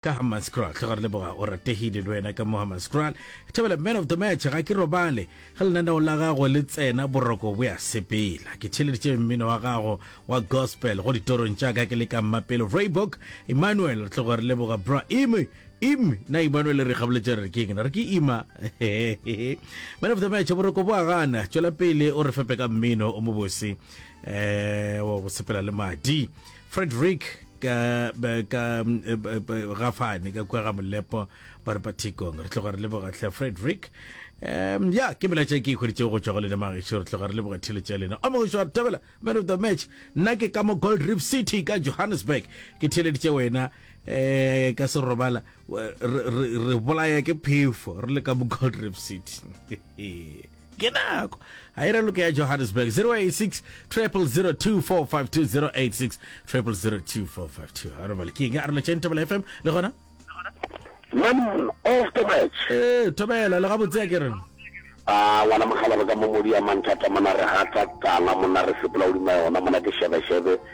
Ka Hammanskraal, hle ga re leboga Oratehile le wena ka mo Hammanskraal. Thabela man of the match, ga ke robale ge lenaneo la gago le tsena boroko bo ya sepela. Ke theleditše mmino wa gago wa gospel go ditorong tša ka ke le ka Mmapelo Vryburg. Emmanuel, re tlo go re leboga bra. Ime, im, na Emmanuel re gaboletše re re ke eng? Re ke ima. Man of the match, boroko bo a gana. Tšwela pele o re fepe ka mmino o mobose eh, wa go sepela le madi. Frederick ka ka gafane ka kwa ga molepo ba re pathikong re tloga re leboga tlhe frederick um ya ke melaetša ke ikgweditšego go tšwa go lena magešo re tloga re leboga theletša lena o mogošo wa thabela man of the match nna ke ka mo gold reef city ka johannesburg ke theleditše wena um ka serobala re bolaya ke phefo re le ka mo gold reef city ke nako ga e raloke ya johannesburg 086 002452 086 002452 ga re bale ke eng a relo tšeng thobela fm le gona Man of the match. ee thobela le gabotse ya ke reng Ah, ngwana mokgalabo ka momodi ya manthata mona re gata tala mona re sepela godima yona mona ke shebeshebe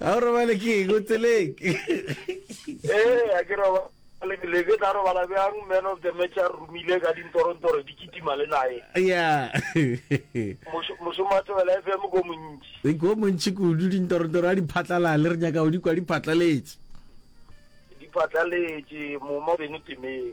ga o robale ke eng o tseleng ee a ke roba lebele ke tla robala bjang man of the match a romile ka dintorontoro di kitima le nae ya mošomo a tebela f m ko montši ko montši kudu dintorontoro a di phatlalale re nyaka o di kwa di phatlaletse di phatlaletse moma beno temeng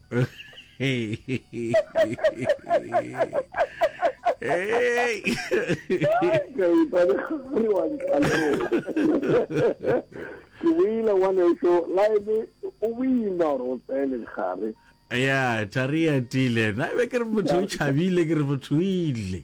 ke boile ngwana eso la ebe o boima gore o tsele gare ya thari ya tile na be ke re motho o chabile ke re motho o ile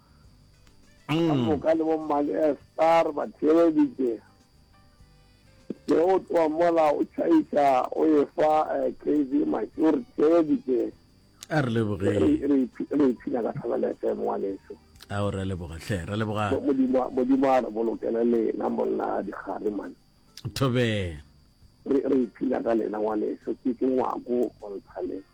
ka mm. moka le bommane estar ba theeleditše ke o tloa mola o tšhaiša o e fa eh, kv matše o re theeleditše a re lebogee re ipshina ka thabela fm wa leso a o re leboga tlhe re leboga modimo a re bolokele lena monna a dikgare mane thobee re ipshina ka lena wa leso ke ke ngwako go ntsha leso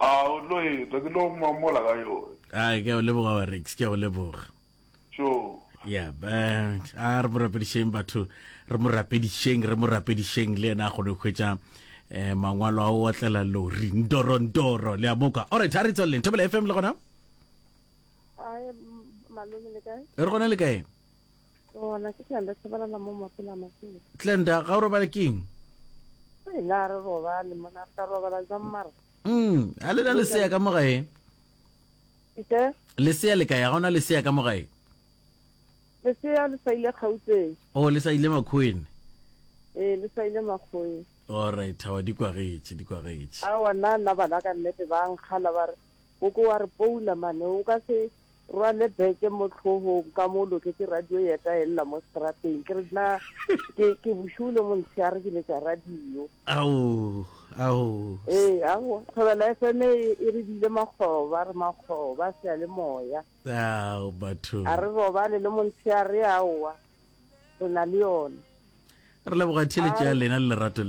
A o tlo etwa ke lo mamola ka yone. A ke a o leboga wa Rex, ke a o leboga. Sure. Yeah, but a re mo rapedišeng batho, re mo rapedišeng, re mo rapedišeng le yena a kgone go hwetša eh mangwalo a o otlela lori ndoro ndoro le a moka. All right, a re tsweleleng Thobela FM le gona. Hi, malome le kae? Re gona le kae? Gona ke tla le sebelela mo mapela masela. Glenda, ga o robale keng? Hey, na re robale mona re tla robala jang mara? Mm, a le na lesea ka mo gae? Ite? Lesea le kae? Ga ona lesea ka mo gae? Lesea le sa ile Gauteng. Oh, le sa ile Makhoeng. Ee, le sa ile Makhoeng. All right, hawa di kwagetše, di kwagetše. Awa nna nna bana ka nnete ba nkgala ba re o ko wa re poula mane o ka se Rwale beke mo tlhogong ka mo loketse radio yeta elela mo strateng ke re na ke ke bushule mo ntshare ke letsa radio ao ao ee ao thobela fm e, e re bile makgoba re makgoba se le moya ao batho a re robale le mo ntshare aowa re na le yone re leboga theletša lena le lerato leo